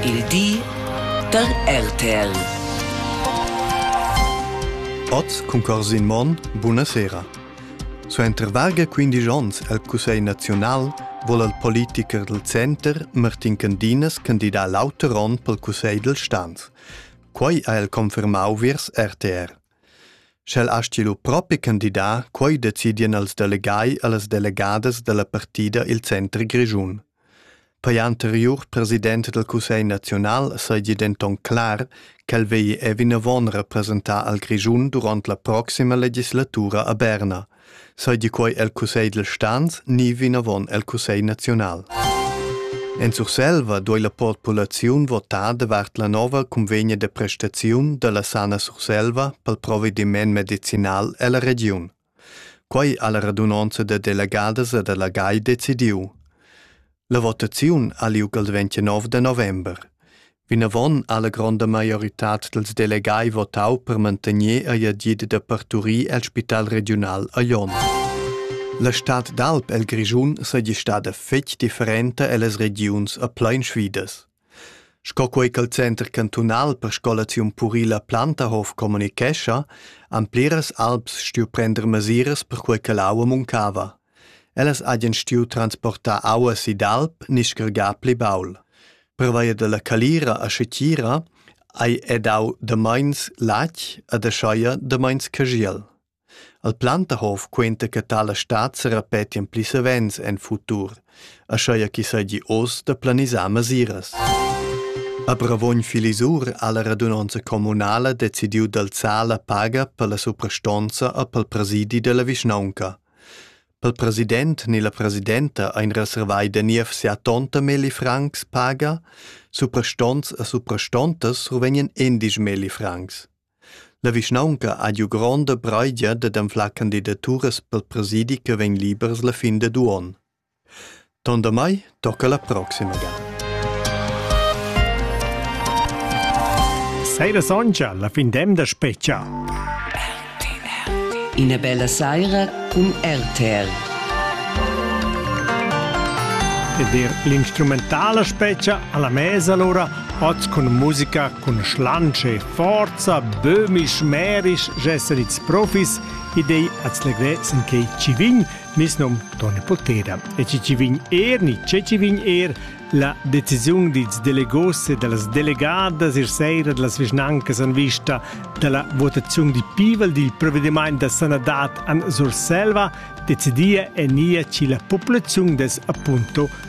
Il di da RTL. Oz cun Corsin Monn, buna sera. Suenter varga 15 onns al Cussegl naziunal vol al politicher del Center Martin Candinas candidar l'auter onn pel Cussegl del Stanz. Quai ha el confermau viers RTR. Sch'el asti lu propi candidar, quai decidien als delegai e las delegadas della partida il Center Grischun. Per l'anteriur president dal cussegl naziunal seigi denton clar ch'el vegli era vinavon representar al Grischun duront la proxima legislatura a Berna, seigi quei el cussegl dils stans ni vinavon el cussegl naziunal. En Surselva duei la populaziun votar davart la nova convegna de prestaziun dalla Sana Surselva pel provediment medicinal ella regiun. Quei ha la radunonza da delegadas e delegai decidiu. La votaziun ha liug il 29 de november. Vinavon ha la gronda maioritad dels delegai votau per mantegner ei agid da parturir el spital regiunal a Jon. La stad d'alp el Grischun seigi stada fetg differenta ellas regiuns a plein sfidas. Sco quei ch'el center cantunal per scolaziun purila Plantahof communicescha, han pliras alps stuiu prender mesiras perquei che l'aua muncava. Ellas hagien stuiu transportar aua si d'alp ni scargar pli baul. Pervia dalla calira a Schetira ei ei dau da meins latg e da scheia da meins cagiel. El Plantahof quenta che tala stad se repetien pli savens en futur, aschia chi seigi oz da planisar masiras. A Bravogn Filisur ha la radunonza communala decidiu d'alzar la paga per la suprastonza e pel presidi della vischnaunca. Pel president ni la presidenta ein reservai da niev sia tonta Meli Franks paga, suprastonts e suprastontas ruvenien endisch Meli Franks. La vischnaunca ha giu gronda breigia dad anflar candidaturas pel presidi che vegn libers la fin dad uonn. Tondamai tocca la proxima ga. Saira soncha, la fin d'emda speccia. Ina bella saira cun RTR. Ed er l'instrumentala speccia alla mesa allora, oz con musica, con schlange Forza bömisch merisch gesser its profis ed ei at slegrezen che ci vin nis nom Toni Potera e ci ci vin er ni ce ci vin er la decisiun dils delegos e dallas delegadas ir seira dallas vischnancas an vista dalla votaziun di pivel dil provvediment da sanadad an Surselva decidia e nia ci la populaziun des appunto